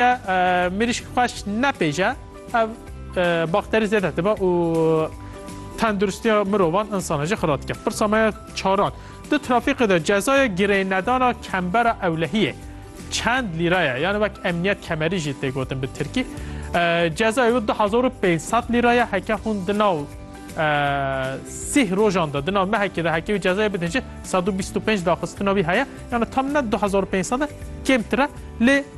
Eger mirîşk xweş nepêje ev bakterî zêde dibe û tenduristiya mirovan insana jî xira dike. Pirsa me ya çaran. Di trafîkê de cezaya girênedana kembera ewlehiyê çend lîra ye? Yani wek emniyet kemerî jî tê gotin bi tirkî. Cezaya wî 2500 lîra ye heke hûn di nav sih rojan de di nav mehekê de hekê wî cezaya bidin jî 125 daxistina wî heye. Yani tam ne 2500 e kêmtir e lê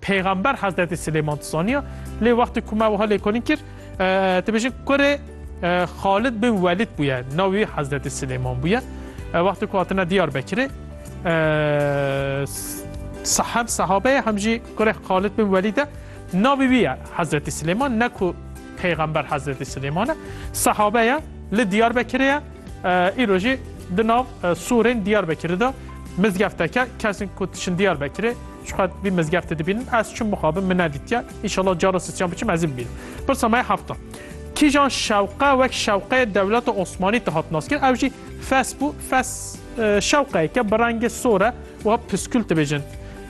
Peyxember Hezretî Silêman dizaniya lê wextê ku me wiha lêkolîn kir dibêjin kurê Xalid bin Welîd bûye navê wî Hezretî Silêman bûye. Wextê ku hatine Diyarbekirê hem sehabe ye hem jî kurê Xalid bin Welîd e navê wî ye Hezretî Silêman ne ku Peyxember Hezretî Silêman e sehabe ye li Diyarbekirê ye îro jî di nav Sûrên Diyarbekirê de mizgefteke kesên ku diçin Diyarbekirê Çiqat vî mizgeftê dibînin ez çim mixabim min nedîtiye înşallah cara sisiyan biçim ez ê bibînim. Pirsa me heft e. Kîjan şewqe wek şewqeyê dewleta Osmanî de hat naskir ew jî fes bû fes e, şewqeyeke bi rengê sor e û piskûl dibêjin.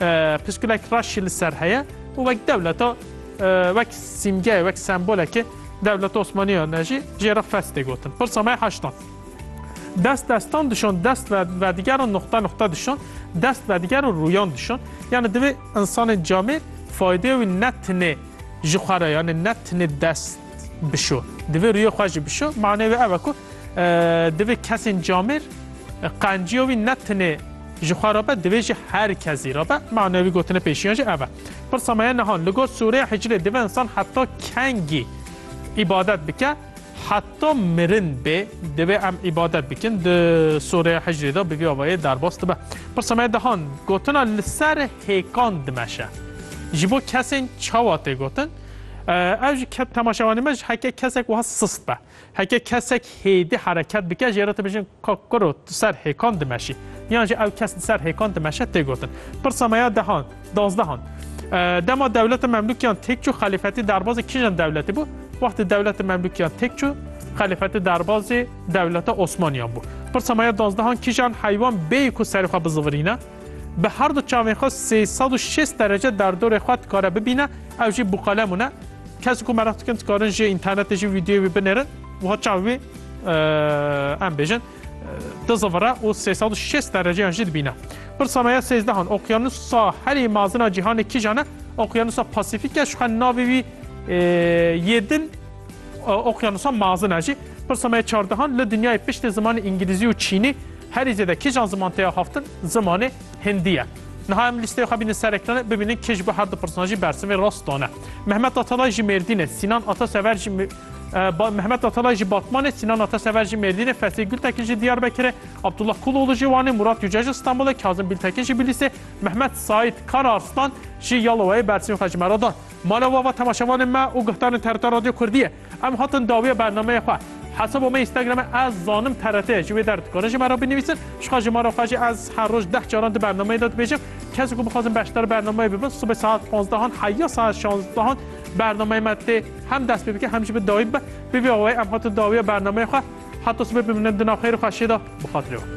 E, Piskûlek reş jî li ser heye û wek dewleta e, wek sîmgeyê wek sembolekê dewleta Osmanîyan e jî jê re fes tê gotin. Pirsa me heşt e. Dest destan dişon, dest ve vedigeran nuqta nuqta dişon, dest vedigeran rûyan dişon. Yani divê insanên camêr faydê wî ne tinê ji xwe re yani ne tinê dest bişo. Divê rûyê xwe jî bişo. Manê wê ev e ku e, divê kesên camêr e, qenciya wî ne tinê ji xwe re be divê jî her kesî re be. Manê wî gotine pêşiyan jî ev e. Pirsa me ye nihan li gor sûreya hicrê divê insan heta kengî îbadet bike Heta mirin bê divê em îbadet bikin. Di soreya hicrê de bi vî avayê derbas dibe. Pirsa me dehan gotina li ser hêkan dimeşe. Ji bo kesên çawa tê gotin? Ev ji temaşevanê me ji heke kesek wiha sist be. Heke kesek hêdî hereket bike jê re tibêjin Ka qurot di ser hêkan dimeşî yan jî ew kes di ser hêkan dimeşe tê gotin. Pirsa me ya dehan, dazdehan. Dema dewleta Memlûkiyan têk çû xelîfetî derbazê kîjan dewletî bû? Wextê dewleta Memlûkiyan têk çû xelîfetî derbazê dewleta Osmaniyan bû. Pirsa me ya dazdehan kîjan heywan bêyî ku serê xwe bizivirîne? Bi her du çavên xwe sê sed û şêst derece derdorê xwe dikare bibîne, ew jî bûqelem hûn e. Kes ku meraq dikin dikarin ji înternetê jî vîdeoyê wî binêrin. Wiha çav wî em bêjin di zivire û 360 dereceyan jî dibîne. Pirsa me ya sêzdehan Okyanusa herî mazina cîhanê kîjan e? Okyanusa Pasîfîk e şixwe navê wî yê din Okyanusa mazin e jî. Pirsa me ya çardehan li dinyayê piştê zimanê îngilîzî û çînî herî zêde kîjan ziman têya haftin zimanê hindî ye. Niha em lîsteya xwe bînin ser ekranê bibînin kê ji bo her du pirsan jî bersivê rast dane. Mehmet Atalay ji Mêrdînê, Sînan Atasever ji Mehmet Atalay ji Batmanê, Sinan Atasever jî Mêrdînê, Fethî Gultekin jî Diyarbekirê, Abdullah Kuloğlu jî Wanê, Murat Yüce ji Stenbolê, Kazim Biltekin jî Bilîsê, Mehmet Saîd Karaarslan jî Yalowayê Bersîm xwe ji me re da. Mala we va temaşevanên me û guhdarên TRT Radyo Kurdiyê. Em hatin dawiya bernameyê xwe. Hesaba me Instagramê ez zanim TRT ji wê der dikarin ji me re binivîsin. Jixwe ji me re xwe jî ez her roj deh caran di bernameyê de dibêjim. Kesên ku bixwazin beşdar bernameyê bibin sibê saet panzdehan heya saet şanzdehan Bernameyê me tê hem dest pê bike hem jî bi dawî bibe. Bi vî awayî em hatin dawiya bernameyê xwe. Heta sibê bimînin di nav xêr û xweşiyê de bi xatirê wan.